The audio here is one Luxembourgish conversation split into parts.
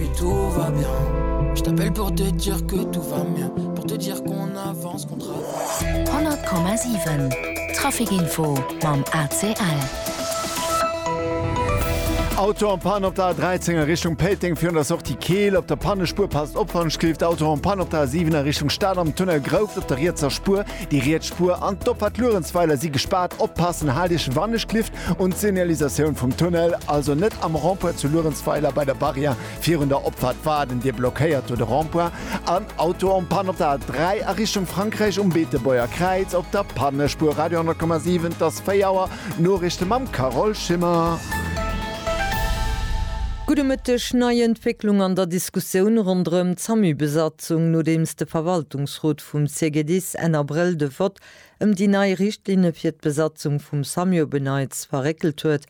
Que tout va bien Je t'appelle pour te dire que tout va bien Pour te dire qu'on avance, qu'on travaille 100,7 Traficinfo mam ACL. Auto en panne op der A13 a Richtung Péiteng virun der Sortie Keel. Op der Pannespuer passt op wann schléift. Auto en panne op der A7 a Richtung Stad am Tunnel Grouft op der rietser Spuer. Déi riets Spuer an d'Opfahrt Luerenzweiler si gespaart. Oppassen, haalt Iech wann e schléift. Un d'Signalisatioun vum Tunnel, also net am Rond-point zu Luerenzweiler bei der Barrière virun der Opfahrt waarden, Dir blockéiert do de Rond-point an Auto en Panne op der A 3 a Richtung Frankräich um Beetebuerger Kräiz op der Pannespuer. Radio 10,7, et ass 4 Auer, Noriichte mam Carole Schimmer. Gudde Mëtteg, Nei Entwécklung an der Diskussioun ronderëm d'SAMU-Besatzung, nodeems de Verwaltungsrot vum CGDIS Enn Abrëll de Vott ëm déi nei Richtlinne fir d'Besatzung vum Samio Beneits verréckelt huet,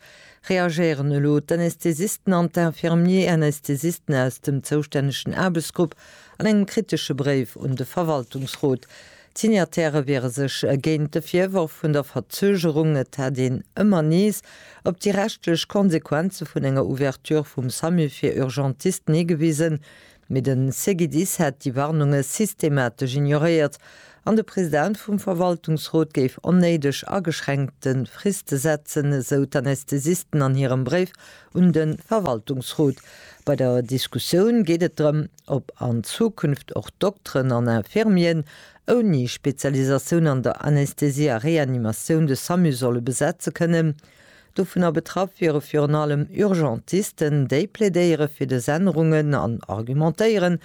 reagéieren elo d'Anästhesisten an d'Infirmier-Anästhesisten aus dem zoustännegen Aarbechtsgrupp an engem kritesche Bréif un de Verwaltungsrot. D'Signataire wiere sech géint de Virworf vun der Verzögerung, et hätt een ëmmer nees op déi rechtlech Konsequenze vun enger Ouverture vum Samio fir Urgentisten higewisen, Mee de CGDIS hätt déi Warnunge systematesch ignoréiert an de President vum Verwaltungsrot géif onnéideg ageschränkte Friste setzen, esou d'Anästhesisten an hirem Bréif un de Verwaltungsrot. Bei der Diskussioun geet et drëm, ob an Zukunft och Dokteren an Infirmieren ouni Spezialisatioun an der Anästhesie a Reanimatioun de Samu solle besetze kënnen. Dovunner betraff wiere virun allem Urgentisten, déi plädéiere fir dës Ännerungen an argumentéieren,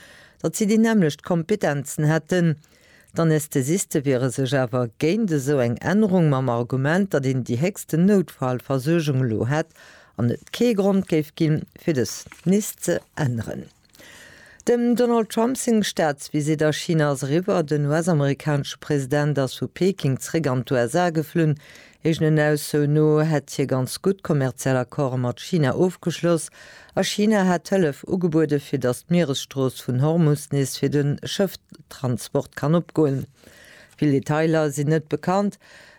datt si déi nämmlecht Kompetenzen hätten. D'Anästhesiste wiere sech awer géint esou eng Ännerung mam Argument, datt een déi héchsten Noutfalversuergung elo hätt an et kee Grond géif ginn, fir dës nees ze änneren. Dem Donald Trump seng Staatsvisitt a China ass eriwwer. Den US-amerikanesche President ass vu Peking zeréck an d'USA geflunn. Eegenen Aussoen no hätt hie ganz gutt kommerziell Accorde mat China ofgeschloss a China hätt Hëllef ugebueden, fir datt d'Mieresstrooss vun Hormus nees fir de Schëfftransport kann opgoen. Vill Detailer sinn net bekannt.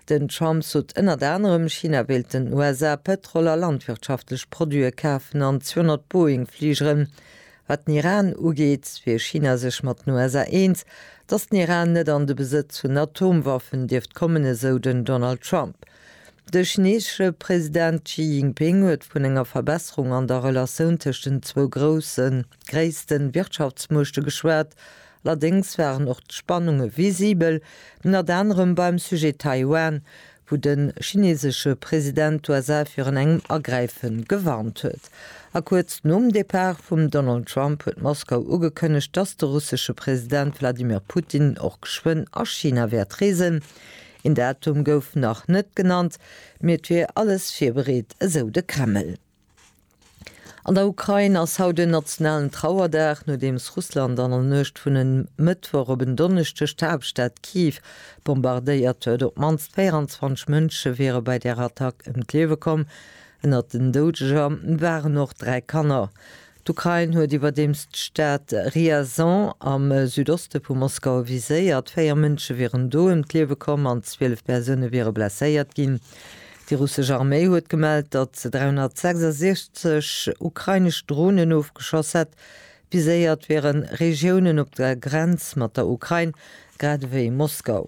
Den Trump sot ënnert anerem, China wéilt den USA Pëtrol a landwirtschaftlech Produite kafen an 200 Boeing-Fligeren. Wat den Iran ugeet, wier China sech mat den USA eens, datt den Iran net an de Besëtz vun Atomwaffen dierft kommen, esou den Donald Trump. De chineesesche President Xi Jinping huet vun enger Verbesserung an der Relatioun tëscht den zwou groussen. gréisste Wirtschaftsmuechte geschwat, allerdéngs waren och d'Spannunge visibel, ënnert anerem beim Sujet Taiwan, wou de chinesesche President d'USA virun engem Agräife gewarnt huet. A kuerz nom Depart vum Donald Trump huet Moskau ugekënnegt, datt de russesche President Wladimir Putin och geschwënn a China wäert reesen. Een Datum gouf nach net genannt, mee et wier alles virbereet, esou de Kreml. An der Ukrain ass haut en nationalen Trauerdag, nodeems Russland an der Nuecht vun en Mëttwoch op en Donneschdeg d'Haaptstad Kiew bombardéiert huet. Op d'mannst 24 Mënsche wiere bei där Attack ëm d'Liewe komm. Ënnert den Doudeger waren och dräi Kanner. D'Ukrain huet iwwerdeems d'Stad Ryazan am Südoste vu Moskau viséiert. Véier Mënsche wieren do ëm d'Liewe komm an 12 Persoune wiere blesséiert ginn. Déi russesch Arméi huet gemellt, datt se 366 ukrainesch Dronen ofgeschoss hätt. Viséiert wiere Regiounen op der Grenz mat der Ukrain, grad ewéi Moskau.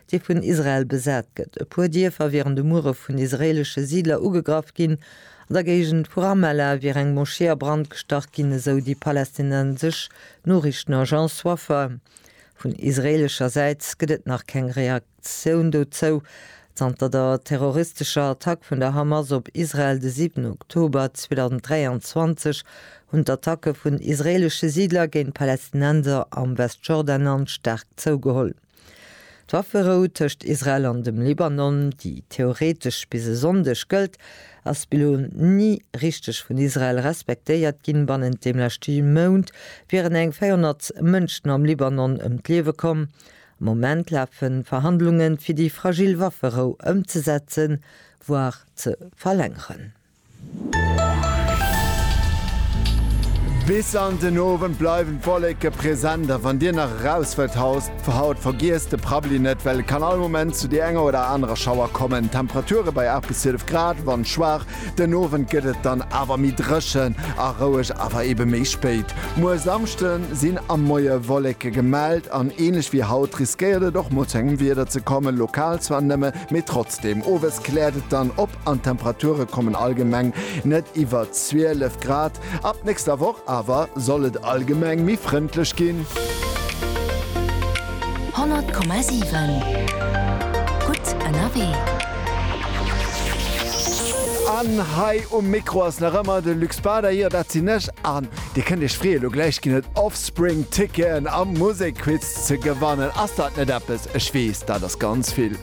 dee vun Israel besat gëtt. E puer Dierfer wieren de Muere vun israeelesche Siidler ugegraff ginn. An der Géigend vu Ramallah wier eng Moschee a Brand gestach ginn, esou déi palästinensesch Noriichtenagence Wafa. Vun israeelescher Säit gëtt et nach keng Reaktioun dozou. Zanter der terroristescher Attack vun der Hamas op Israel de 7 Oktober 2023 hunn d'Attacke vun israeelesche Siidler géint Palästinenser am Westjordanland staark zougeholl. D'Wafferou tëscht Israel an dem Libanon, déi theoretesch bis e Sonndeg gëllt, ass bis elo ni richteg vun Israel respektéiert ginn. Bannent dem leschte Mount wieren eng 400 Mënschen am Libanon ëm d'Liewe komm. Am Moment lafe Verhandlungen, fir déi fragil Wafferou ëmzesetzen, voire ze verlängeren. Bis an den Owend bleiwen d'Wolleke present a wann dir nach eraus wëllt haus fir haut, vergiesst de Prabbeli net, well et kann all Moment zu déi enger oder anerer Schauer kommen. Temperature bei 8 bis 12 Grad, Wand schwaach. Den Owend gëtt et dann awer méi dréchen a roueg, awer ebe méi spéit. Muer Samschde sinn am Moie Wolleke gemellt an änlech wéi haut riskéiert et och mol zu engem Wieder ze kommen, lokal zwar nëmme, mee trotzdeem. Owes kläert et dann op. an d'Temperature kommen allgemeng net iwwer 12 Grad. Ab nächster Woch awer soll et allgemeng méi frëndlech ginn. 100,7 gutt ënnerwee. An hei um Mikro ass nach ëmmer de Luc Spader, jo dat sinn ech, an Dir kënnt Iech freeën, lo gläich ginn et Offspring Ticketen am Musekquiz ze gewannen. Ass dat net eppes? Ech weess, dat ass ganz vill.